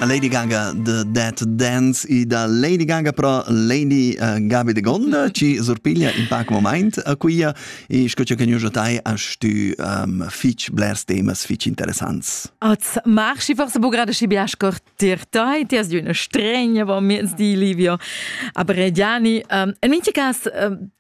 Lady Gaga de That Dance i da Lady Gaga pro Lady uh, Gabi de Gonda ci surpiglia in pac moment a quia e sco che gnüjo tai hast du um, fich blers temas fich interessants. Az marchi forse bu grade schi biascor tir tai ti as di una stregna va miez di Livio aber Diani um, in minti cas um,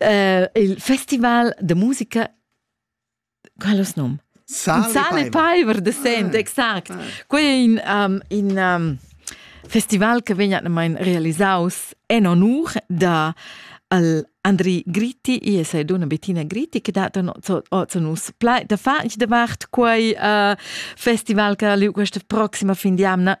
äh, il festival de musica quellos num Sal, Sal e Paiver de Sent, ah, exact. Ah. Quei è in, um, in um, festival che vegna realisaus en onur da al Andri Gritti, e è una Bettina Gritti, che dat nus da far davart quei uh, festival che questa prossima fin di amna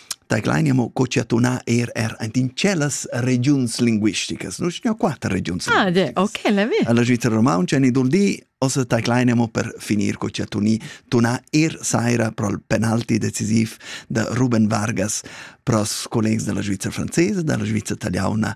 Taglein mo co cha tunà er er aint in tschellas regiuns linguisticas. Nu stia quatter regiuns Ah, de, ok, l'ha vi. Alla Svizra romaunca ni dul di os taglein mo per finir co cha tuni tunà er saira pro il penalti decisiv da Ruben Vargas pro els collegs della Svizra francesa, della Svizra italiana